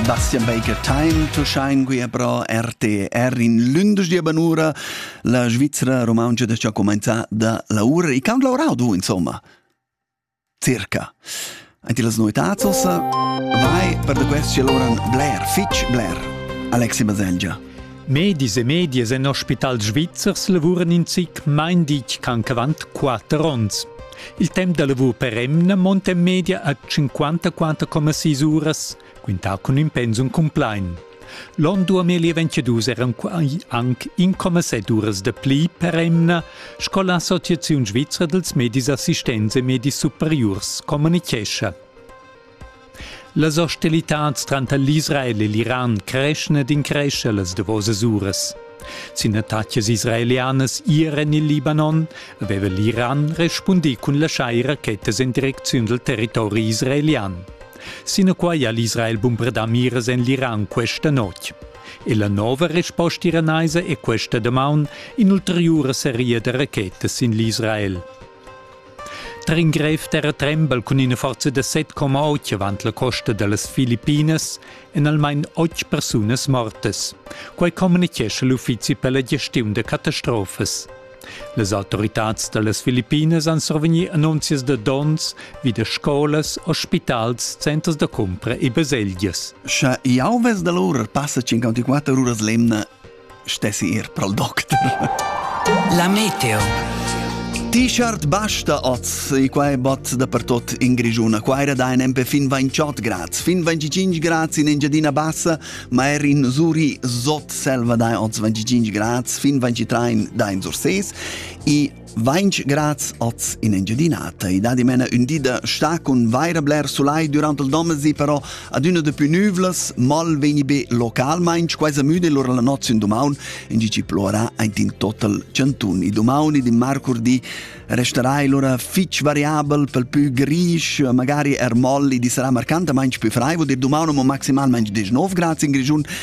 Bastian Baker Time, tu schein guia pro RTR in lündesch banura, la Svizzera romaunca da cha comenza da laura. E quant laurau du, insomma? Circa. Enti las noetats ossa, vai per da quest che loran bler, fitch bler. Alexi Baselgia. Medis e medias en ospitals svizzers lavuran in zic main ditg cancavant quatter onns. Il temp da lavur per emna monta en media a 54,6 uras, quintà cun ün pensum cumplain. L'on 2022 eran anc 1,7 uras da pli per emna, sco l'Associaziun svizra dels medis assistents e medis superiurs communichescha. Las hostilitats tranter l'Israel e l'Iran creschan ed increschan las davosas uras. Sin attacas israelianas ier en il Libanon aveva l'Iran respundì cun laschar rachetas en direcziun dal territori israelian. Sinaquai ha l'Israel bombardà miras en l'Iran questa notg. E la nova resposta iranaisa è questa damaun in'ulteriura seria da rachetas sin l'Israel. Tar in grev terra trembel cun ina forza da 7,8 avant la costa da las Filippinas èn almain otg persunas mortas. Quai communitgescha l'uffizi per la gestiun da catastrofas. Las autoritads da las Filippinas han survegnì annunzias da donns vi da scolas, ospitals, centers da cumpra e baselgias. Sche jau ves da l'ora passa 54 uras l'emna stessi ir pra'l docter. La meteo. T-shirt basta oz, e quai bot da per tot in Grigiuna. Qua era da in empe fin 28 grad, fin 25 grad in Engiadina Bassa, ma er in Zuri sot selva da oz 25 grad, fin 23 da in Surses. E Vainch graz oz in Engiadinata. I dà dimena ün di da sta cun vaira bler sulai durant il domesi, però adüna da pü nüvlas, mal vegni be localmaing, quaisa müda lura la noz in dumaun, in gi ci plora aint in total chantun. I dumaun ed in marcurdi resterai lura fich variabel pel pü grisch, magari er moll, i sarà marcantamaing pü fraivo, dir dumaun amo maximalmaing 19 graz in Grischun